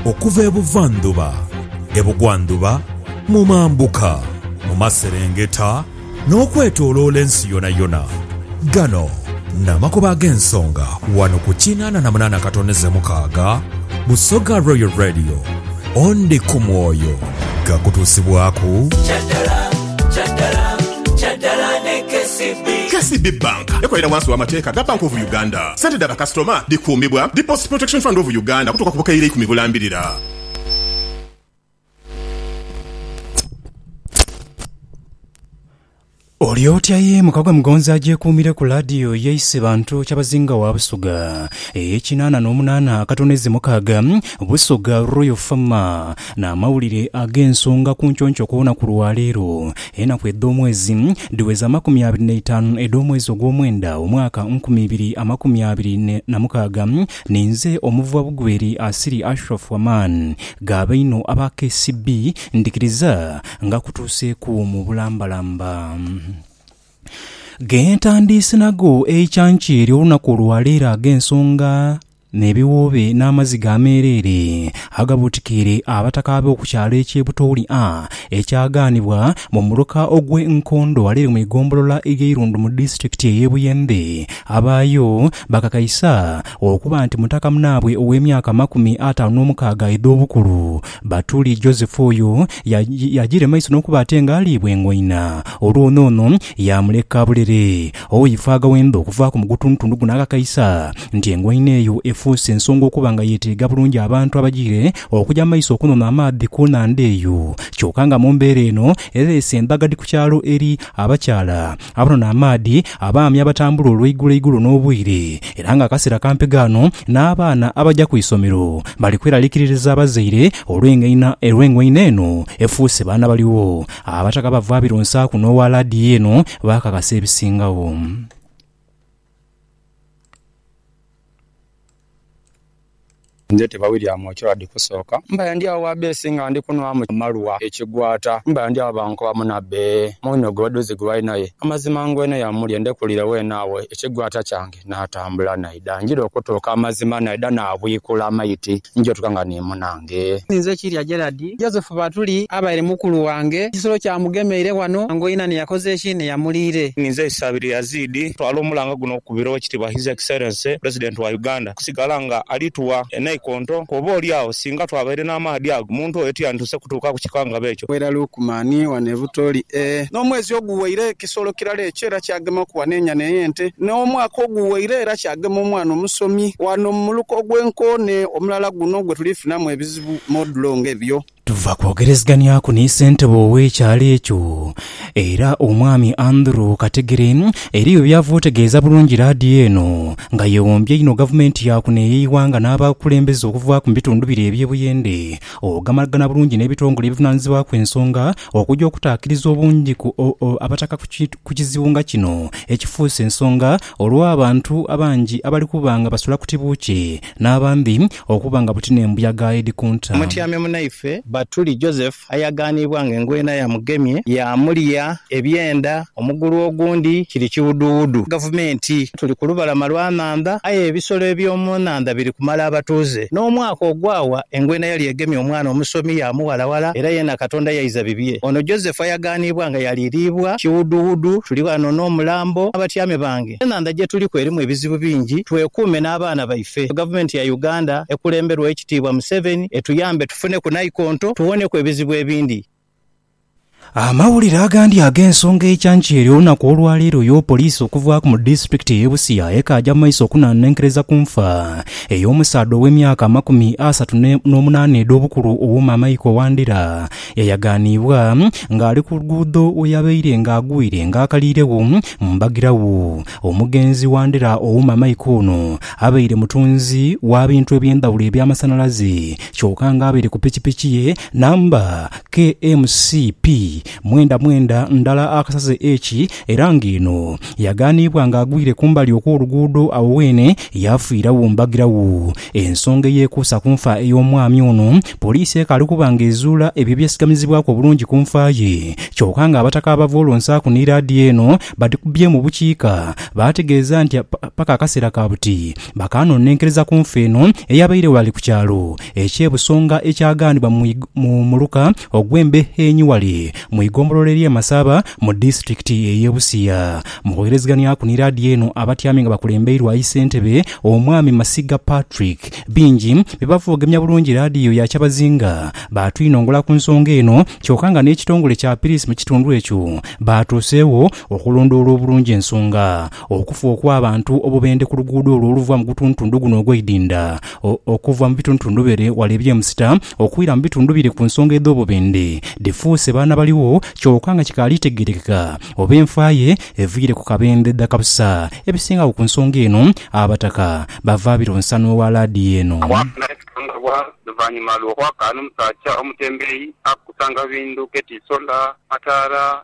Okuva ebuvandhuba, ebugwandhuba, mu mambuka, mu maserengeta, n'okwetoloola ensi yonayona. Gano n'amakubo ag'ensonga wano ku kinaana na munaana katoneze mukaaga Busoga Royal Radio. Ondi ku mwoyo gakutuusibwaku. KCB Bank ekolera wansi w'amateeka ga Bank of Uganda. Sente dha bakasitoma dhikuumibwa Deposit Protection Fund of Uganda okutuuka ku bukaire ikumi bulambirira. Oli otya ye muka gwa Mugonzi agyekuumire ku laadiyo ye Isebantu Kyabazinga wa Busoga ey'ekinaana n'omunaana akatono eze mukaaga, Busoga Royal Farmer. N'amawulire ag'ensonga ku nconco ku lunaku lwa leero. Enaku edh'omwezi dhiweza amakumi abiri n'eitaanu edh'omwezi ogw'omwenda omwaka nkumi ibiri amakumi abiri na mukaaga. Ninze Omuvuwa Bugweri Asiri Ashraf Waman, ghaba inho aba KCB, ndhikiriza nga kutuuseeku mu bulambalamba. Ge ntandiise nago eicanca ery'olunaku lwa leero ag'ensonga. N'ebiwoobe n'amaziga ameereere agabuutikiire abataka be oku kyalo eky'e Butooli A ekyagaanibwa mu muluka ogw'e Nkondo alere mu igombolola y'e Irundu mu disiturikiti ey'e Buyende. Abaayo bakakaisa okuba nti mutaka munaabwe ow'emyaka amakumi ataanu n'omukaaga edh'obukulu, Batuli Joseph oyo yajiire maiso n'okuba ate ng'aliibwa engoina olwo n'ono yaamuleka bulere. Owo ye faaga wendha okuvaaku mu gutundutundu guno akakaisa nti engoina eyo efuuse nsonga okuba nga yeeteega bulungi abantu abajiire okuja mu maiso okunona amaadhi ku nhandha eyo. Kyoka nga mu mbeera eno ereese endhagadhi ku kyalo eri abakyala abanona amaadhi, abaami abatambula olweigulo igulo n'obwire era nga akaseera kampi ghano n'abaana abaja ku isomero bali kweralikiririza abazaire olw'engoina eno efuuse baana baligho. Abataka abava Abironsaaku n'owa Laadiyo eno baakakasa ebisingagho. Nze te ba William Ochora di kusooka. Mbaire ndi agho gha beesi nga ndi kunhwamu amalwa ekigwata. Mbaire ndi agho bankoba munabe, mwine ogwo dhuzi gwe walinayo? Amazima ngwene yamulye, ndekulire weene agho ekigwata kyange. Naatambula naidha. Njira okutuuka amazima naidha naabwikula amaiti nija otuuka nga ni munange. Ninze Kirya Gerald. Joseph Batuli abaire mukulu wange. Ekisolo kyamugemeire ghano. Angoina ni yakoze ki? Ni yamuliire. Ninze Isabirye Yazid. Ntwala omulanga guno okukubira Owekitiibwa His Excellency President wa Uganda okusigala nga ali tuwa enaikonto ku oba oli agho singa twabaire n'amaadhi ago omuntu oyo tiyandisoose kutuuka ku kikangabwa ekyo. Wera Lukman, wano e Butoli e. N'omwezi oguweire. kisolo kirala ekyo era kyagemaku ghano enyana ey'ente n'omwaka oguwaire era kyagema omwana omusomi ghano mu muluka ogw'enkoone omulala guno gwe tuli funamu ebizibu modulo ng'ebyo. Tuva kwogereziganyaku ni ssentebe ow'ekyalo ekyo era Omwami Andrew Kategere eriyo by'ava otegeeza bulungi laadiyo eno nga yeewombya einho Gavumenti ya kuno ey'eighanga n'abakulembeze okuvaaku mu bitundu bire eby'e Buyende ogamagana bulungi n'ebitongole ebivunaanizibwaku ensonga Okuja okutaakiriza obungi ku Abataka ku kizibu nga kino ekifuuse ensonga olw'abantu abangi abali kuba nga basula ku tibuukye n'abandi okuba nga buti n'embuyaga edhi kunta. Mutyame munaife Batuli Joseph ayagaaniibwa nga engwena yamugemye yaamulya ebyenda. Omugulu ogundi kiri kiwuduwudu. Gavumenti. Tuli ku lubalama lwa nhandha, aye ebisolo eby'omu nhandha biri kumala abatuuze. N'omwaka ogwawa, engwena yali egemye omwana omusomi yaamuwalawala era yeena Katonda yaiza bibye. Ono Joseph ayaganibwa nga yaliriibwa kiwuduwudu. Tuli ghano n'omulambo n'abatyame bange. Enhandha gye tuliku erimu ebizibu bingi. Twekuume n'abaana baife. Gavumenti ya Uganda ekulemberwa Owekitiibwa Museveni etuyambe tufuneku naikonto tuwoneku ebizibu ebindi. Amawulire agandi ag'ensonga ey'ekyancha eri olunaku olwaleero yo poliisi okuvaaku mu disitulikiti ey'e Busia ekaaja mu maiso okunanenkereza ku nfa ey'omusaadha ow'emyaka amakumi asatu n'omunaana edh'obukulu owooma Michael Wandera yayaganiibwa ng'ali ku luguudho weyabaire nga agwire nga akaliiregho mu mbagiragho. Omugenzi Wandera owooma Michael ono abaire mutunzi wa bintu eby'endhawulo eby'amasanalaze kyoka nga abaire ku pikipiki ye Namba KMCP mwenda mwenda ndala akasaze eki era ng'eno yagaaniibwa ng'agwire kumbali okw'oluguudo agho weene yaafiiragho mbagiragho. Ensonga eyeekuusa ku nfa ey'omwami ono, poliisi ekaali kuba ng'ezuula ebyo ebyesigamizibwaku obulungi ku nfa ye kyoka ng'abataka abavoolonsaaku ni laadiyo eno badhikubyeemu bukiika baategeeza nti paka akaseera ka buti bakaanoonenkereza ku nfa eno eyabaire ghale ku kyalo Eky'ebusonga ekyagaanibwa mu muluka ogw'embe enyu ghale mu igombolola ery'e Masaba mu disitulikiti ey'e Busia. Mu kwogerezeghanyaku ni laadiyo eno, abatyami nga bakulembeirwa Isentebe Omwami Masiga Patrick, bingi bye bava ogemya bulungi laadiyo ya kyabazinga baatwinongola ku nsonga eno kyoka nga n'ekitongole kya Piriisi mu kitundu ekyo baatuuseegho okulondoola obulungi ensonga Okufa okw'abantu obubendhe ku luguudo olwo oluva mu gutuntundu guno ogw'eidinda, okuva mu bituntundu bire wala eby'emusita okwira mu bitundu bire ku nsonga edh'obubendhe dhifuuse baana baligho kyoka nga kikaali tegerekeka oba enfa ye eviire ku kabendhe dha kabusa. Ebisingagho ku nsonga eno Abataka bava biro nsanhu owa laadiyo eno. Awaatula ebisangibwa luvannyuma lw'okwakaana omusaja omutembeeyi akukusanga bindu ketiisola, mataara,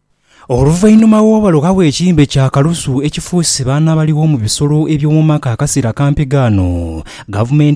Oluvainhuma w'obalugha bw'ekimbe kya kalusu ekifuuse baana abaligho mu bisolo eby'omu maka akasera kampi ghano, gavumenti.